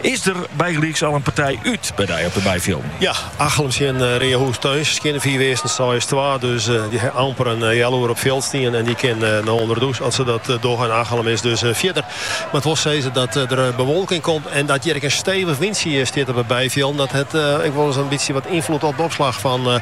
Is der bygelyks al in partij út by dy op de byfjilden? Ja, Achlum tsjin Reahûs-Turns skjinne fiif earsten seis twa. Dus dy ha amper in healoer op fjild stien en dy kin no ûnder de dûs as se dat dogge. En Achlum is dus fjirder. Moat wol sizze dat der bewolking komt en dat hjir ek in stevich wintsje stiet op de byfjilden. Dat hat ek wolris in bytsje wat ynfloed op de opslach fan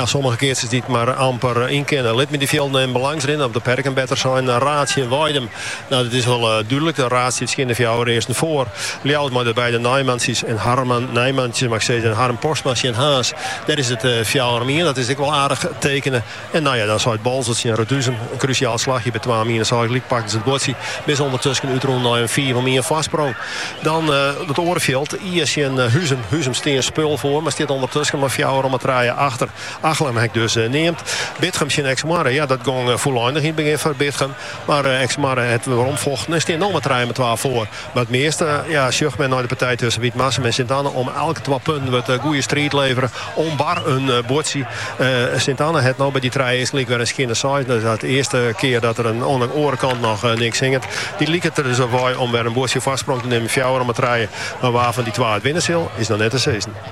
sommige keatsers dy't mar amper yn kinne. Lit my dy fjilden even bylâns rinne of de perken better sein. Raerd tsjin Weidum. Nou, dat is wol dúdlik. Raerd stiet skjinne fjouwer earsten foar. Ljouwert mei de beide Nijmansies en Harman Nijmansies, mag ik sizze, en Harm Postma tsjin Haas. Dêr is it fjouwer om ien. Dat is ek wol aardich tekene. En nou ja, dan seit Boalsert tsjin Reduzum. In krusjaal slachje by twa om ien. Seis gelyk pakken se it buordsje. Binne se ûndertusken útrûn nei in fiif om ien foarsprong. Dan it oare fjild, Ie tsjin Huzum. Huzum stie in spul foar, mar stiet ûndertusken mei fjouwer om 'e trije achter. Achlum ha ik dus neamd. Bitgum tsjin Eksmoarre. Ja, dat gong fûleinich yn it begjin foar Bitgum. Mar Eksmoarre hat weromfochten en steane no mei trije mei twa foar. Mar it measte sjocht men nei de partij tusken Wytmarsum en Sint-Anne om elk twa punten wurdt goede striid levere om bar in buordsje. Sint-Anne hat no by dy trije earsten gelyk wer in skjinne seis. Dat is de earste kear dat der oan de oare kant noch niks hinget. Dy liket der dus op wei om wer in buordsje foarsprong te nimmen, fjouwer om 'e trije. Mar wa fan dy twa it winne sil, is noch net te sizzen.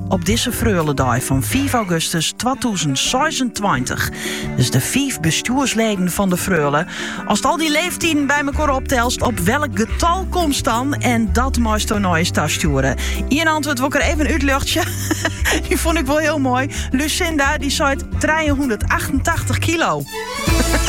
Op dizze Freuledei fan fiif augustus twatûzen seisentweintich dus de fiif bestjoersleden fan de Freule. Ast al dy leeftiden by mekaar optelst, op welk getal komst dan? En dat meisto nei ús tastjoere. Ien antwurd wol ik der even útljochtsje. Die vond ik wel heel mooi. Lucinda dy seit trijehûndertachtentachtich kilo.